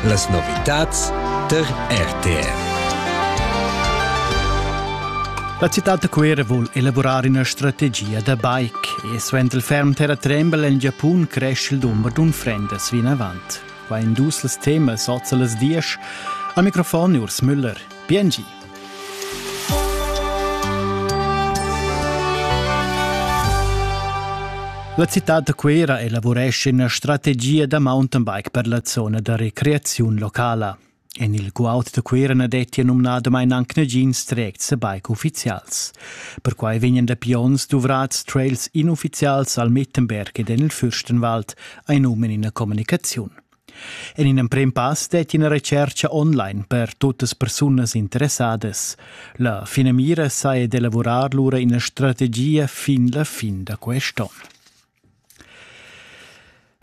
Las novitads tar RTR. La citad da Cuera vul elaborar ina strategia da bike e suenter il ferm terratrembel en Giapun cresce il dumber d'unfrendas vinavant. Qua in dus las temas oz a las diesch. Am Mikrofon Urs Müller. Biengi. La citad da Cuera elavurescha ina strategia da mountainbike per la zona da recreaziun locala. En il guaud da Cuera na dettia numnadamain anc nagins trects e bike uffizials. Perquai vegnan dapi onns duvrads trails inuffizials al Mettenberg ed en il Fürstenwald, ein um in ina communicaziun. En in emprem pass detti ina retschertga online per tuttas persunas interessadas. La finamira saja d'elavurar lura ina strategia fin la fin da quest'onn.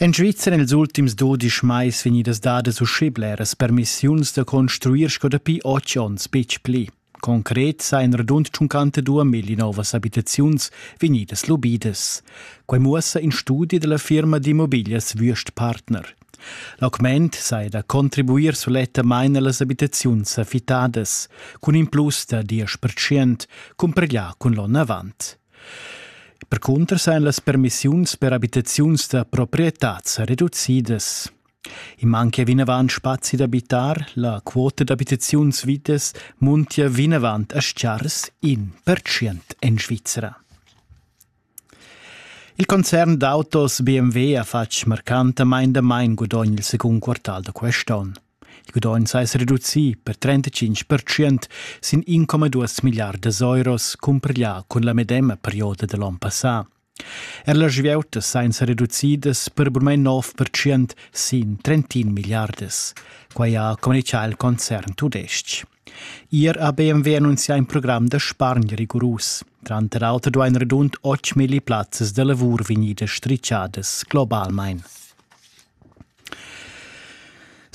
En Svizzera ils ultims dudisch mais vegnidas dadas uschè bleras permissiuns da construir sco dapi otg onns betg pli. Concret sa in radund tschuncanta duamilli novas abitaziuns vegnidas lubidas. Quai muossa in studi dalla firma d'immobiglias Würst Partner. L'augment sai da contribuir sulettamain allas abitaziuns affittadas, cun in plus da 10% cumpareglià cun l'onn avant. Percunter sain las permissiuns per abitaziuns da proprietà reducidas. I manca vinavant spazi d'abitar, la quota d'abitaziuns vitas muntia vinavant a Schars in percient en Svizra. Il concern d'autos BMW ha fatg marcantamain damain gudogn il secund quartal da quest'onn. Il gudogn s'è reducì per 35% sin 1,2 miliardas euros cumparglià cun la medema perioda da l'onn passà. Er las vieutas ein sereducidas per bugen nov percent sin trentin milliardas. Quai ha communichà il concern tudestg. Ier ha BMW annunzià in program da spargn rigurus. Tranter auter duain redund 8 milli plazzas da lavur vegnidas stritgadas globalmain.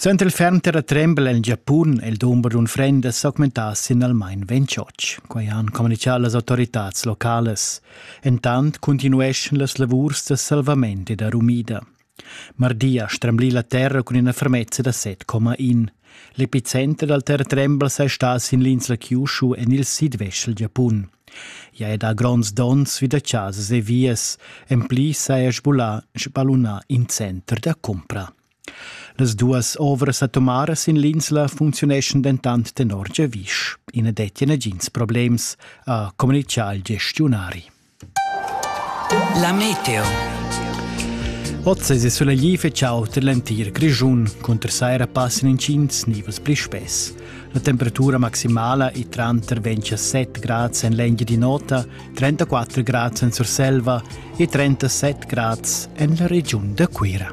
Suenter il ferm terratrembel el Giapun è il dumber d'unfrendas s'augmentà signalmain ventg. Quai han communitgà las autoritads localas. Entant cuntinueschan las lavurs da salvament e da rumida. Mardi ha stremblì la terra cun ina fermezza da 7,1. L'epicenter dal terretremblas è stà sin l'insla Kyushu en il sidvest dal Giapun. I ha dà gronds donns vi da chasas e vias, en pli saja sballunà in center da cumpra. Las duas ovras atomaras sin l'insla funcziuneschan dentant tenor giavisch. I na dettia nagins problems, ha communitgà il gestiunari. La meteo. Oz è sulegli fetg aut en l'entir Grischun, cunter saira passan intgins nivels pli spess. La temperatura maximala è tranter 27 grads en l'engia di nota, 34 grads en Surselva e 37 grads en la regiun da Cuira.